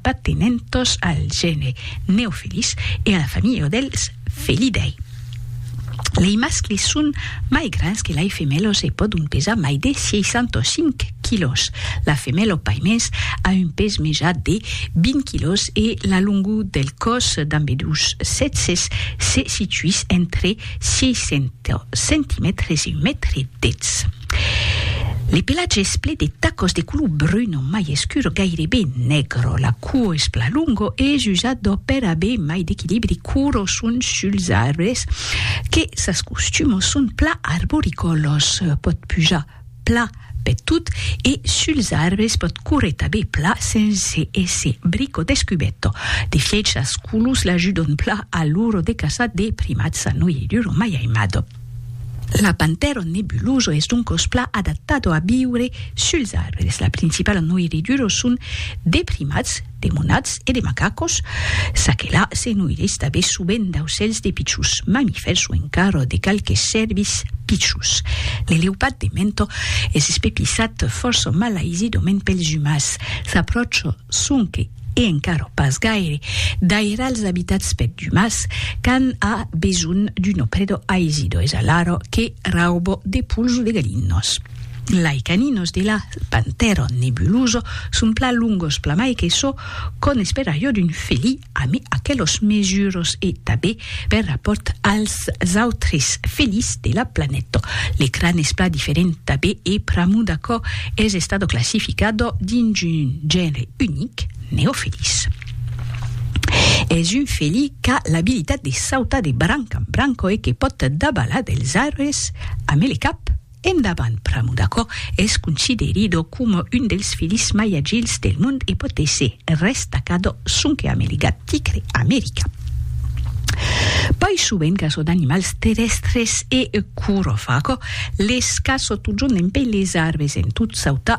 Patenentos al gène Neofelis e a la familha dels Felidae. Lei mascles son mai grands que lai femelos e pòdon pesar mai de 65 quilòs. La femelo paimens a un pes mejat de 20 quilòs e la longor del còs d'ambedús sèxes se situís entre 600 centimètres, un mètre dètz. Le pelatge es ple de tacos de color brun o mai escur, gairebe negro. La cuo es pla longo e es usado per aver mai d'equilibri cur o son suls arbres que sas costumos son pla arboricolos, pòt pujar pla peth tot e suls arbres pòt córrer tanben pla sense èsser bric o descubèto. De fièch sas colos l'ajudon pla a l'ora de caçar de primats a noi e duro mai aimado. L'apantèron nebuloso es doncos pla adaptado a viure suls arbres. La principala noi e duro son de primats. de monats e de macacos, ça que la se noirís tanben sovent d'aucèls de pichons mamifèrs o encara de qualques cèrvis pichons. Le leupat de mento es espepissat fòrça malaisidament pels umans, s'apròcha sonque e encara pas gaire daire als abitats pèr d'umans quand a besonh d'una preda aisidor es alara que rauba de pols o de galinas. Lai caninos de la Pantheron nebuloso son plan longos plamai que çò qu'òm espèra jo d'un felí amé aquelos mesuros e tabé per rapòrt als autres felís de la planèto. Le cran es plan diferent tabé e pr'amor d'aquò es estado classificado dins un genre unic, Neofelis. Es un felí qu'a l'abilitat de sautar de branc en branc e que pòt dabalar dels arbres amé le cap. Endavant pr'amor d'aquò, es considerido coma un dels filhs mai agils del mond e pòt èsser restacado sonque a America, tigre, America. Pòi sovent caçon d'animals terrèstres e corophago, les caço totjorn dempè les arbres en tot sautar,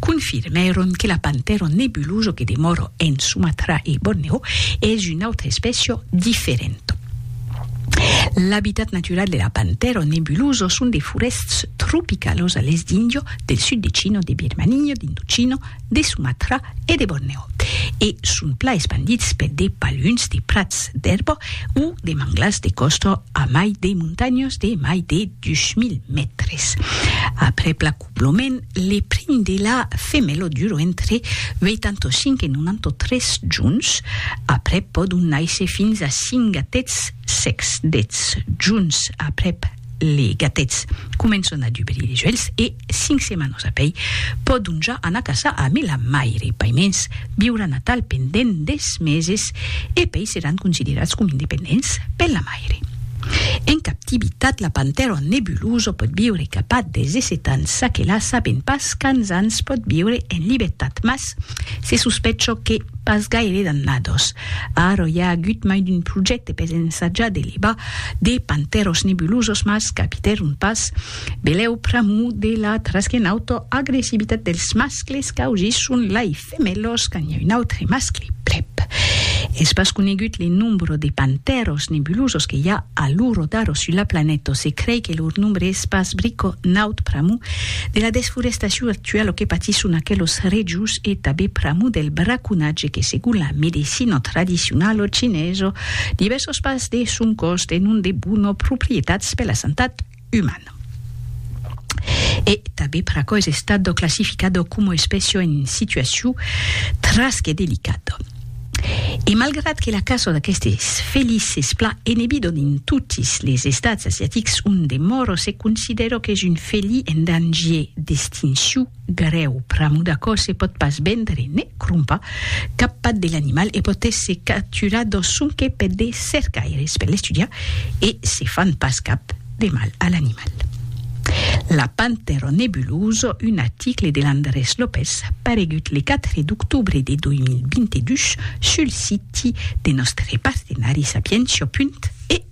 confirmèron que la Pantèron nebuloso que demòra en Sumatra e Borneo es una autra espècia diferenta. L'abitat natural de la Pantèron nebuloso son de forèsts tropicalos a l'èst d'Índia, del sud de China, de Birmania, d'Indochina, de Sumatra e de Borneo, e son plan espandits per de paluns de prats d'èrba o de manglars de còsta a mai de montanhas de mai de 2.000 mètres. Aprèp la. Lo men le primi de la femelo duro entre 85 e 93 juns, aprèp pòdon nàisser fins a 5 gatets secs. Dètz juns aprèp le gatets començon a dubrir es uelhs e 5 setmanos apèi pòdon ja anar caçar amé la maire. Paimens viuràn atal pendent des meses e pèi seràn considerats com independents per la maire. Aire. En captivitat, la pantèra nebulosa pòt viure cap a 17 ans, ça que la sabèm pas quants ans pòt viure en libertat, mas se sospècha que pas gaire d'annadas. Ara i a agut mai d'un projècte per ensajar de levar de pantèras nebulosas, mas capitèron pas. Belèu pr'amor de la trasghenauta agressivitat dels mascles causisson l'aife. De melhors quand i a un autre mascle prèp. Es pas conegut le nombro de pantèros nebulosos que i a a lo rodaro sus la planèto. Se crei que lor nombre es pas brico naut pr'amor de la desforestacion actuala que patisson aquelos rejos e tabé pr'amor del braconatge que segon la medecina tradicionala chinesa divèrsas parts de son còs tenon de bona proprietats per la santat. uman. E tanben per aquò es estado classificado como espècia en situacion tras que delicada. E malgrat que la caça d'aquestes felins es plan enebidon en totis les estats asiatics onde moro se considera qu'es un felin en dangier d'extincion, Garèu, pr'amor d'aquò se pòt pas vendre, ne crompar, cap pat de l'animal e pòt èsser capturat dau sonque per de cercaires per l'estudiar e se fan pas cap de mal a l'animal. La Panthéro nebuloso, un article de l'Andrés López paregut le 4 d'octobre de 2022 sul siti de nòstre partenari sapientia.eu.